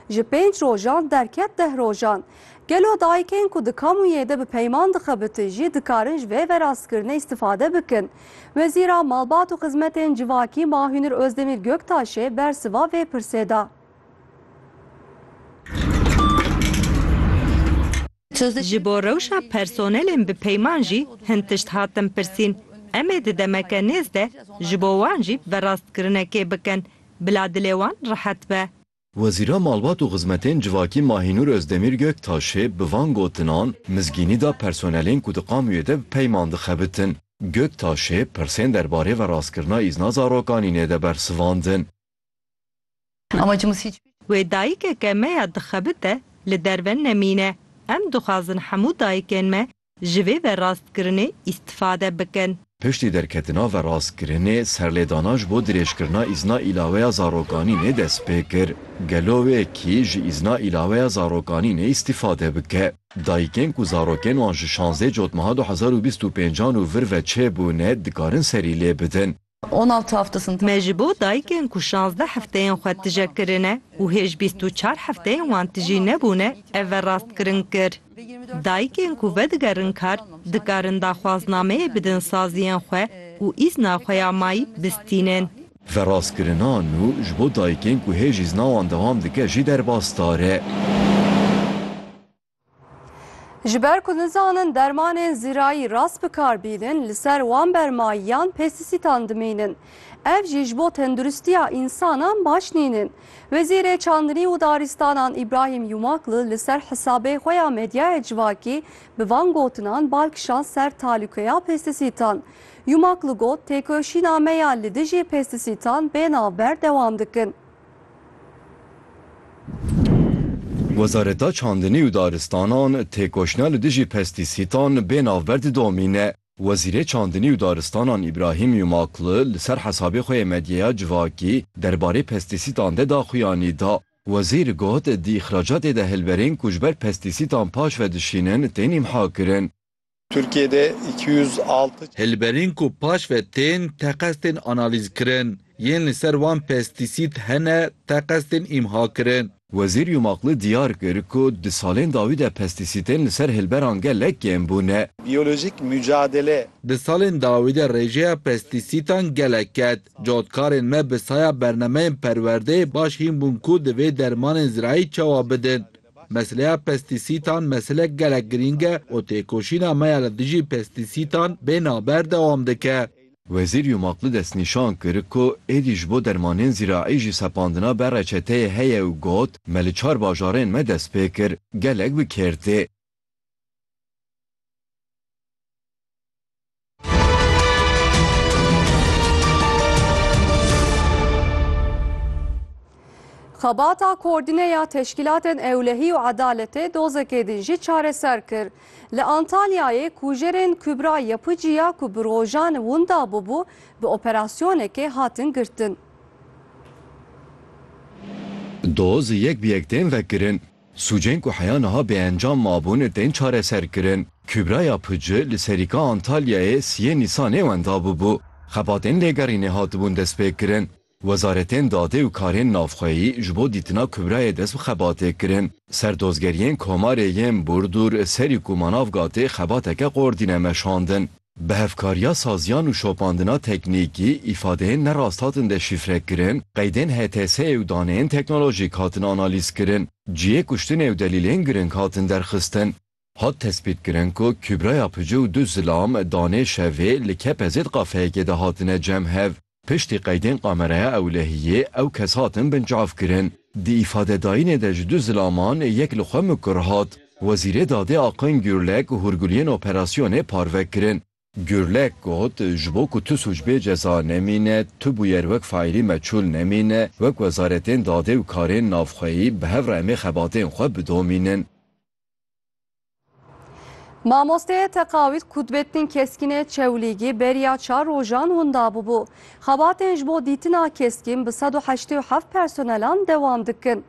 Ji pênc rojan derket deh rojan. Gelo dayikên ku di kamûyê de bi peyman dixebitin jî dikarin ji vê verastkirinê îstifade bikin? Wezîra Malbat û Xizmetên Civakî Mahûnir Ozdemîr Göktaşê bersiva vê pirsê da. Ji bo rewşa personelên bi peyman jî hin tişt hatin pirsîn. Em ê di demeke nêz de ji bo wan jî verastkirinekê bikin bila dilê wan rehet be. Wezîra Malbat û Xizmetên Civakî Mahînûr Ozdemîr Göktaşê bi van gotinan mizgînî da personelên ku di kamûyê de bi peyman dixebitin. Göktaşê pirsên derbarê veraskirina îzna zarokanî nê de bersivandin. Wê dayikeke me ya dixebite li derve nemîne. Em dixwazin hemû dayikên me ji vê verrastkirinê îstifade bikin. Piştî derketina verrastkirinê, serlêdana ji bo dirêjkirina îzna îlaweya zarokanînê dest pê kir. Gelo wê kî ji îzna îlaweya zarokanînê îstifade bike? Dayikên ku zarokên wan ji şazdeh cotmeha du hezar û bîst û pênc an û vir ve çêbûne, dikarin serî lê bidin. Me ji bo dayikên ku şazdeh hefteyên xwe tije kirine û hêj bîst û çar hefteyên wan tijî nebûne ev verrastkirin kir. Dayikên ku vedigerin kar dikarin daxwaznameyê bidin saziyên xwe û îzna xwe ya mayî bistînin. Verrastkirina nû ji bo dayikên ku hêj îzna wan dewam dike jî derbasdar e. Ji ber ku nizanin dermanên zirayî rast bi kar bînin li ser wan bermayiyan pestîsîtan dimînin. Ev jî ji bo tenduristiya însanan baş nînin. Wezîrê Çandinî û Daristanan Îbrahîm Yumakli li ser hisabê xwe ya medyaya civakî bi van gotinan bal kişand ser talûkeya pestîsîtan. Yumakli got, Têkoşîna me ya li dijî pestîsîtan bê navber dewam dikin. Wezareta Çandinî û Daristanan têkoşîna li dijî pestîsîtan bê navber didomîne. Wezîrê Çandinî û Daristanan Îbrahîm Yumaklu li ser hesabê xwe yê medyeya civakî derbarê pestîsîtan de daxuyanî da. Wezîr got, Di îxracatê de hilberên ku ji ber pestîsîtan paşve dişînin tên îmhakirin. Tirkiyê de îki yüz altı. Hilberîn ku paş ve tên teqez tên analîzkirin, yên li ser wan pestîsîd hene teqez tên îmhakirin. Wezîr Yumakli diyar kir ku di salên dawî de pestîsîtên li ser hilberan gelek kêm bûne. Biyolojîk mucadele. Di salên dawî de rêjeya pestîsîtan gelek ket. Cotkarên me bi saya bernameyên perwerdeyê baş hîn bûn ku di vê dermanên zirayî çawa bidin. Meseleya pestîsîtan meselek gelek girîng e û têkoşîna me ya li dijî pestîsîtan bê naber dewam dike. Wezîr Yumakli destnîşan kir ku êdî ji bo dermanên zîraî jî sepandina be reçeteyê heye û got, Me li çar bajarên me dest pê kir, gelek bi kêr tê. Xebata koordîne ya teşkîlatên ewlehî û edaletê dozekê din jî çareser kir. Li Antalyayê kujerên Kubra Yapıcı ya ku bi rojan winda bûbû bi operasyonekê hatin girtin. Doz yek bi yek tên vekirin. Sûcên ku heya niha bêencam mabûn tên çareserkirin. Kübraya Pıcı li Serîka Antalyayê siyê Nîsanê wenda bûbû. Xebatên lêgerînê hatibûn destpêkirin. Wezaretên Dadê û Karên Navxweyî ji bo dîtina Kübrayê dest bi xebatê kirin. Serdozgeriyên Komarê yên Burdur, Serîk û Manavgatê xebateke qordî ne meşandin. Bi hevkariya saziyan û şopandina teknîkî, îfadeyên ne rasthatin deşîfrekirin, qeydên HTS'ê û daneyên teknolojîk hatin analîzkirin, cihê kuştinê û delîlên giring hatin derxistin. Hat tespîtkirin ku Kûbraya Pici û du zilam, danê şevê, li Kepezê di kafeyekê de hatine cem hev. Piştî qeydên kameraya ewlehiyê ew kes hatin binçavkirin. Di îfadedayînê de ji du zilaman yek li xwe mikur hat. Wezîrê Dadê Aqin Gurlek hûrguliyên operasyonê parve kirin. Gurlek got, Ji bo ku tu sûc bê ceza nemîne, tu bûyer wek faîlî meçûl nemîne, wek wezaretên dadê û karên navxweyî bi hev re em ê xebatên xwe bidomînin. Mamosteyê teqawît Kutbettin Keskînê Çewlîgî beriya çar rojan winda bûbû. Xebatên ji bo dîtina Keskîn bi sed û heştê û heft personelan dewam dikin.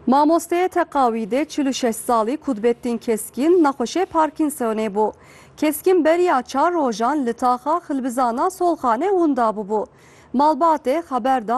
Mamosteyê teqawîdê çil û şeş salî Kutbettin Keskîn nexweşê Parkinsonê bû. Keskîn beriya çar rojan li taxa Xilbizana Solxanê winda bûbû. Malbatê xeber da